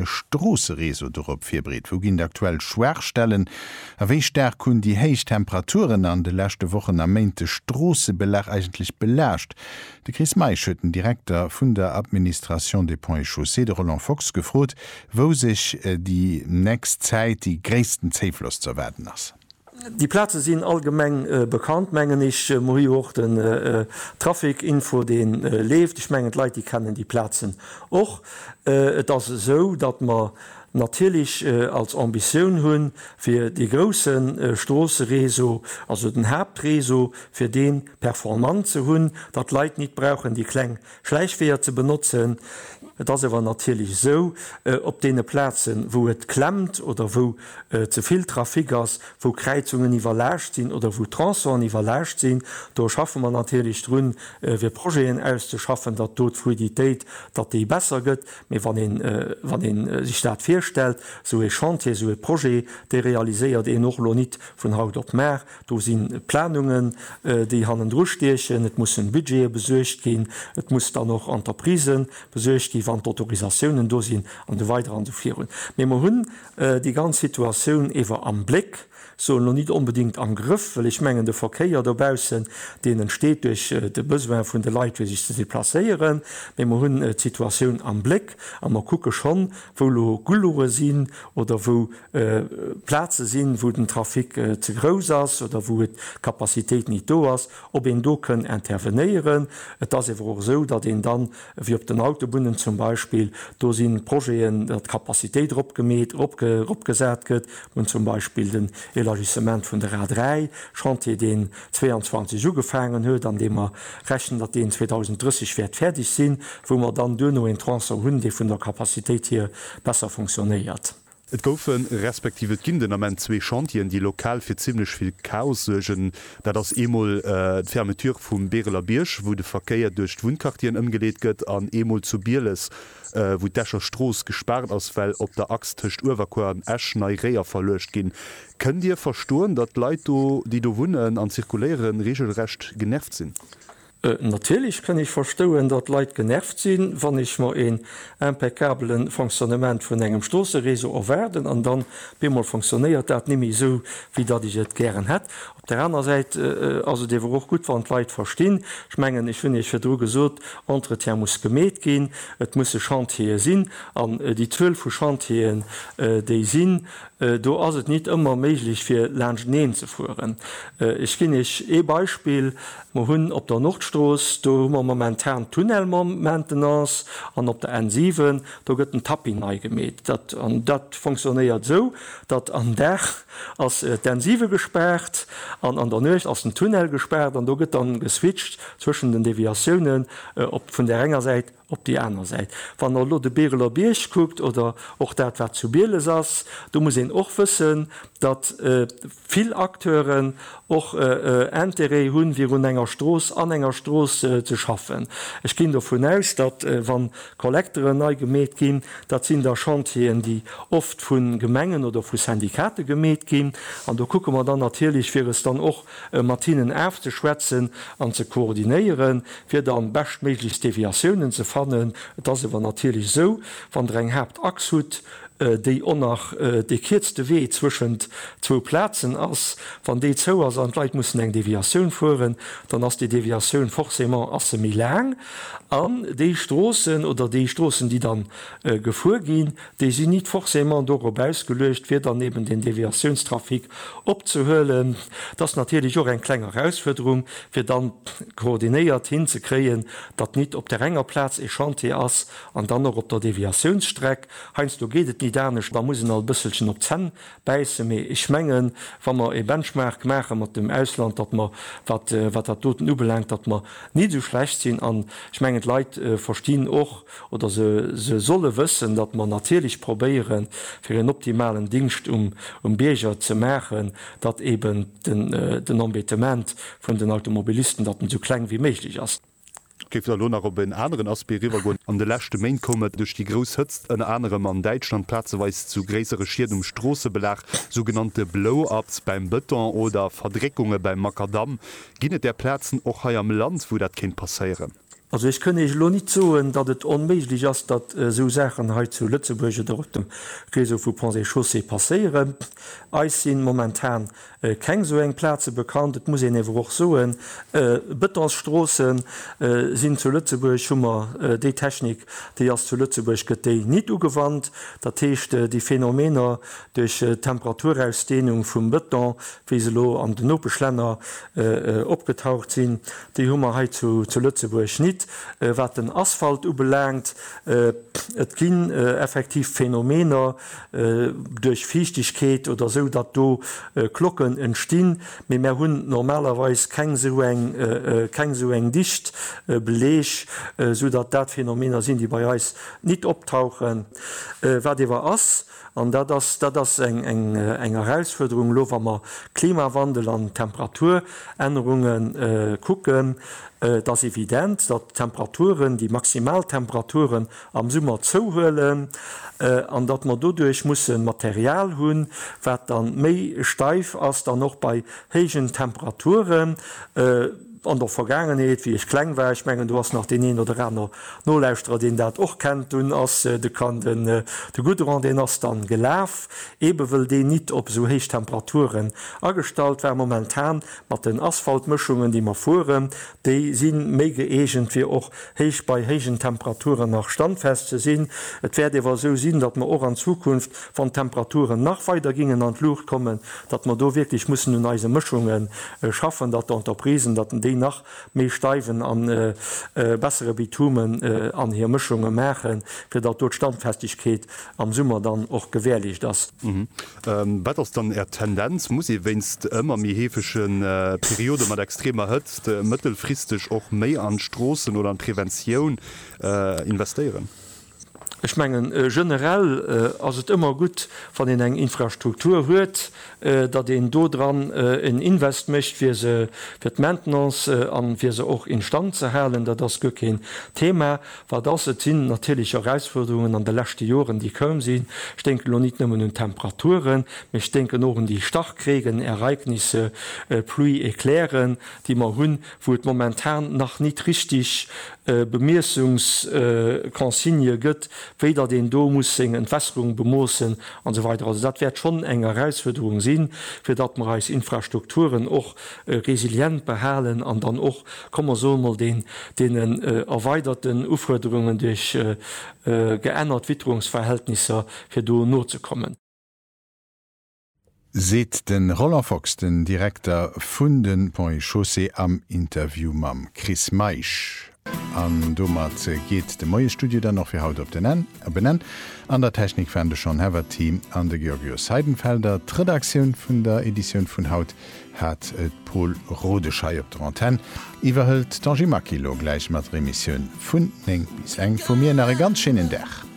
e Stroossereseau dorop virbereet? Wou ginn d'aktuell Schwaachstellen? A wéi staark hunn déi héich Temperaturen an de leschte Wochen a Méint de Stroossebelag eigentlech belaascht? De Chris Meisch huet den Direkter vun der Administration des Ponts et Chaussées, de Roland Fox, gefrot, wou sech déi nächst Zäit déi gréissten Zéifloss ze erwaarden ass. Déi Plaze sinn allgemeng bekannt, mengen ech. Mer hu jo och den Trafic-Info, dee leeft. Ech mengen, d'Leit, déi kennen déi Plazen och. Et ass esou, datt mer natierlech als Ambitioun hunn, fir dee grousse Stroossereseau, also den Haaptreseau, fir dee performant ze hunn, datt d'Leit nit brauchen déi kleng Schläichweeër ze benotzen. Et ass awer natierlech esou, op deene Plazen, wou et klemmt oder wou ze vill Trafic ass, wou Kräizungen iwwerlaascht sinn oder wou Tronçonen iwwerlaascht sinn, do schaffe mer natierlech drun, fir Projeten auszeschaffen, datt do d'Fluiditéit, datt déi besser gëtt. Mee wann een, wann ee sech dat virstellt, esou ee Chantier, esou ee Projet, dee realiséiert een och elo nit vun haut op mar, Do sinn Planungen, déi hannendru stiechen. Et mussen Budgete besuergt ginn. Et muss dann och an d'Entreprise besuergt ginn, wann d'Autorisatiounen do sinn an esou weider an esou virun. Mee mer hunn déi ganz Situatioun ewer am Bléck, soen elo nit onbedéngt am Grëff, well ech mengen de Verkéier dobaussen, deen entsteet duerch de Besoin vun de Leit, fir sech ze deplacéieren. Mee mer hunn d'Situatioun am Bléck a mer kucke schonn, wou elo Gulure sinn oder wou Plaze sinn, wou den Trafic ze grouss ass oder wou d'Capacitéit nit do ass, ob een do kënn intervenéieren. Et ass ewer och esou, datt een dann, wéi op den Autobunnen zum Beispill, do si Projeten, datt d'Capacitéit eropgemeet, eropgesat gëtt. Mir hunn zum Beispill den Élargissement vun der A 3, Chantier, deen 22 ugefaangen huet an dee mer rechnen, datt deen 2030 wäert fäerdeg sinn, wou mer dann duerno een Tronçon hunn, dee vun der Capacitéit hier besser funktionéiert. Et goufen, respektiv et ginn den Ament zwee Chantieren, déi lokal fir zimlech vill Chaos suergen. Dat ass eemol d'Fermeture vum Beereler Bierg, wou de Verkéier duerch d'Wunnquartieren ëmgeleet gëtt, an eemol zu Bieles, wou d'Escher Strooss gespaart ass, well op der Achs tëscht Uewerkuer an Esch nei Réier verluecht ginn. Kënnt Dir verstoen, datt d'Leit do, déi do wunnen an zirkuléieren, reegelrecht genervt sinn? Natierlech kënn ech verstouen, datt Leit genervt sinn, wann ech mer een impeccabelen Fonctionnement vun engem Stroossereseau erwaarden an dann op eemol fonctionnéiert dat nimme esou, wéi datt ech et gären hätt. Op der aner Säit ass et ewer och gutt, wann d'Leit verstinn, ech mengen, ech hunn Iech virdru gesot, Entretien muss gemeet ginn, et musse Chantiere sinn an déi Zuel vu Chantieren, déi sinn, do ass et nit ëmmer méiglech fir laanschteneen ze fueren. Ech ginn Iech ee Beispill, Mer hunn op der Nordstrooss, do hu mer momentan Tunnelmaintenance an op der N7, do gëtt den Tapis nei gemeet. Dat an dat fonctionnéiert esou, datt am Dag ass d'N7 gespaart an an der Nuecht ass den Tunnel gespaart an do gëtt da geswitcht zwëschen den Deviatiounen op vun där enger Säit Op déi aner Säit, wann Der elo de Bereler Bierg kuckt oder och dat, wat zu Bieles ass, do muss een och wëssen, datt vill Acteuren och Interêt hunn, virun enger Strooss, an enger Strooss ze schaffen. Ech ginn dovun aus, datt, wann d'Kollekteren nei gemeet ginn, dat sinn da Chantieren, déi oft vu Gemengen oder vu Syndikate gemeet ginn. An do kucke mer dann natierlech, wier es dann och E mat hinnen afzeschwätzen an ze koordinéieren, fir dann beschtméiglechst Deviatiounen ze fannen. Et ass ewer natierlech esou, wann Der eng Haaptachs hutt, déi och nach dee kierzte Wee zwëschent zwou Plazen ass, wann déi zou ass an d'Leit mussen eng Deviatioun fueren, dann ass déi Deviatioun forcément ass se méi laang an déi Stroossen oder déi Stroossen, déi dann gefuer ginn, Déi sinn nit forcément dorop ausgeluecht, fir dann eben den Deviatiounstrafic opzehuelen. Et ass natierlech och eng kleng Erausfuerderung, fir dann koordinéiert hinzekréien, datt nit op där enger Plaz ee Chantier ass an dann och op der Deviatiounsstreck. Heiansdo geet et nit anescht, da muss een alt e bësselchen op d'Zänn bäissen. Mee ech mengen, wa mer ee Benchmark maache mat dem Ausland, datt mer, wat dat doten ubelaangt, datt mer nit esou schlecht sinn. An ech mengen, d'Leit verstinn och, oder se solle wëssen, datt mer natierlech probéieren, fir en optimalen Dingscht um Bierger ze maachen, datt eeben den Embêtement vun den Automobilisten, datt en esou kleng wéi méiglech ass. Géife mer elo nach op en aneren Aspect eriwwergoen. An de leschte Méint koum et duerch déi grouss Hëtzt ënner anerem an Däitschland plazeweis zu gréissere Schied um Stroossebelag, sougenannte Blow-ups beim Bëton oder Verdréckunge beim Makadamm. Ginn et där Plazen och hei am Land, wou dat kéint passéieren? Also ech kënn Iech elo nit soen, datt et onméiglech ass, datt esou Saachen hei zu Lëtzebuerg oder op dem Réseau vu Ponts et Chaussées passéieren. Eis sinn momentan keng esou eng Plaze bekannt. Et muss een ewer och soen, Betonsstroossen sinn zu Lëtzebuerg, hu mer déi Technik déi ass zu Lëtzebuerg, gëtt déi nit ugewannt. Dat heescht, déi Phänomener duerch d'Temperaturausdehnung vum Beton wéi se elo an den Nopeschlänner opgetaucht sinn, déi hu mer hei zu Lëtzebuerg nit. Wat den Asphalt ubelaangt, et ginn effektiv Phänomener duerch Fiichtegkeet oder esou, datt do Klocken entstinn, mee mär hunn normalerweis keng esou eng, keng esou eng Dicht, Beleg, esou datt dat Phänomener sinn, déi bei eis nit optauchen. Wat ewer ass, An dat ass, dat ass eng Erausfuerderung elo, wa mer Klimawandel an Temperaturännerunge kucken. Et ass evident, datt d'Temperaturen, déi maximal Temperaturen am Summer zouhuelen an datt mer doduerch musse Material hunn, wat da méi steif ass, dann och bei héijen Temperaturen. An der Vergaangenheet, wéi ech kleng war, ech mengen do ass nach deen een oder aner Nolauschterer deen dat och kennt, dunn ass de Kan den de Goudron deen ass dann gelaf, eebe wëll deen nit op esou héich Temperaturen agestallt war. Momentan mat den Asphaltmëschungen déi mer fueren, déi si méi gëeegent fir och héich bei héijen Temperaturen nach standfest ze sinn. Et wäert ewer esou sinn, datt mer och an Zukunft, wann d'Temperaturen nach weider gingen an d'Luucht kommen, datt mer do wierklech mussen un eise Mëschunge schaffen, datt d'Entreprisen, datt déi nach méi steiwen a bessere Bitume an hir Mëschunge maachen, fir datt do d'Standfestegkeet am Summer dann och gewährleecht ass. Wat ass dann Är Tendenz? Muss ee wéinst ëmmer méi heefege Periode mat extremer Hëtzt mëttelfristeg och méi an d'Stroossen oder an d'Preventioun investéieren? Ech mengen, generell ass et ëmmer gutt, wann een eng Infrastruktur huet, datt een do dran en Invest mécht, fir se, fir d'Maintenance a fir se och instand ze halen. Dat ass guer keen Thema. Wat ass? Et sinn natierlech Erausfuerderungen an de leschte Joren, déi koum sinn. Ech denken elo nit nëmmen un d'Temperaturen, mee ech denken och un déi Starkregenereignisse, pluie-éclairen, déi mer hunn, wou et momentan nach nit richtig Bemiessungsconsignë gëtt, wéi datt een do muss seng Entwässerung bemoossen an esou weider. Also dat wäert schonn eng Erausfuerderung sinn, fir datt mer eis Infrastrukturen och resilient behalen an dann och, komm mer soe mol, deenen erweiderten Ufuerderungen duerch geännert Witterungsverhältnisser, fir do nozekommen. seet de Roland Fox, den Direkter vun de Ponts et Chaussées am Interview mam Chris Meisch. An domat geet de Moiesstudio dann och fir haut op den Enn, op en Enn. An der Technik waren de Sean Heverty an de Georgios Heidenfelder. D'Redaktioun vun der Editioun vun haut hat d'Paule Rodesch hei op der Antenn. Iwwerhëlt d'Angie Maquy lo gläich mat der Emissioun vun 9 bis eng. Vu mir nach e ganz schéinen Dag.